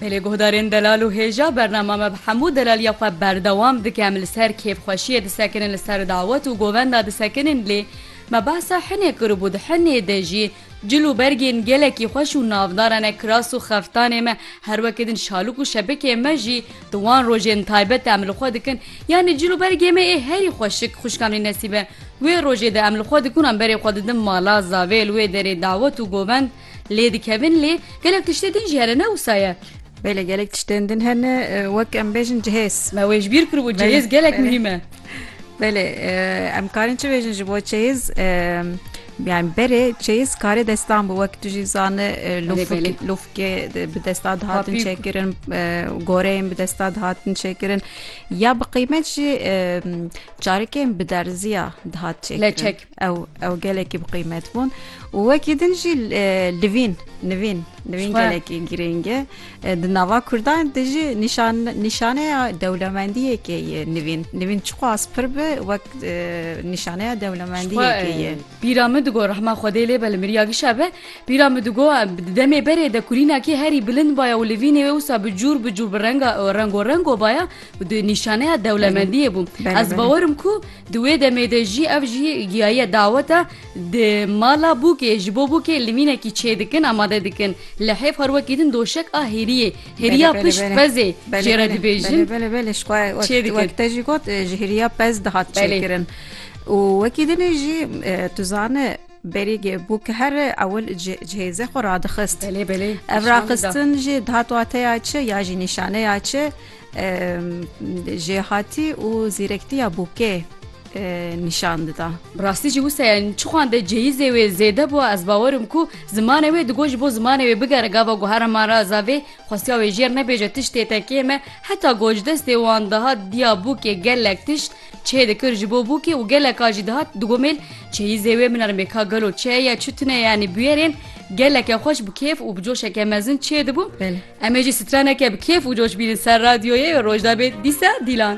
Belê guhdarên delal û hêja bernama me bi hemû delaliya xwe berdewam dike em li ser kêfxweşiyê disekinin li ser dawet û govenda disekinin lê me behsa hinê kiribû di hinê de jî cil û bergên gelekî xweş û navdara ne kiras û xeftanê me her weke din şalûk û şebikê me jî di wan rojên taybet de em li xwe dikin yanî cil û bergê me ê herî xweşik xwişkamnî nesîbe wê rojê de em li xwe dikin em berê xwe didin mala zavê li wê derê dawet û govend Lê dikevin lê gelek tiştê din jî hene ne wisa ye. Belê gelek tiştên din hene wek em bêjin cihêz. Me wê ji bîr kiribû cihêz gelek muhîm e. Belê em karên çi bêjin ji bo çeyiz yani berê çeyiz karê destan bû wek tu jî zane lufkê bi desta dihatin çêkirin goreyên bi desta dihatin çêkirin ya bi qîmet jî çarekên bi derziya dihat çêk. Ew ew gelekî bi qîmet bûn û wekî din jî livîn nivîn nivîn gelekî girîng e di nava Kurdan de jî nîşan nîşaneya dewlemendiyekê ye nivîn nivîn çiqas pir bi wek nîşaneya dewlemendiyekê ye Pîra min digo rehma Xwedê lê be li miriya gişa be pîra min digo di demê berê de kurînakî herî bilind baya û livînê wê wisa bi cûr bi cûr bi renga rengo rengo baya û di nîşaneya dewlemendiyê bû ez bawerim ku Di wê demê de jî ev jî giyaye dawet e. Di mala bûkê ji bo bûkê limînekî çêdikin amade dikin. Li hêv her wekî din doşek a hêriyê, hêriya pişt pezê jê re dibêjin. Belê belê ji xwe wek te jî got ji hêriya pez dihat çêkirin. Û wekî din e jî tu zane berî bûk here ewil ji hêze xwe radixist. Belê belê. Ev raxistin jî dihat wateya çi ya jî nîşaneya çi? Jêhatî û zîrektiya bûkê nîşan dida. Bi rastî jî wisa ye çixwan de cêyîzê wê zêde bû ez bawer im ku zimanê wê digot ji bo zimanê wê bigere gava guhera ma re zavê xwestiya wê jêr nebêje tiştê te kêm e heta gocdestê wan dihat diya bûkê gelek tişt çê dikir ji bo bûkê û geleka jî dihat digomêl çêyîzê wê min ermê ka gelo çeye çi tune yanî bûyerên geleke xweş bi kêf û bi coşeke mezin çê dibû. Em ê jî straneke bi kêf û coş bînin ser radyoyê û roj da bê dîsa dîlan.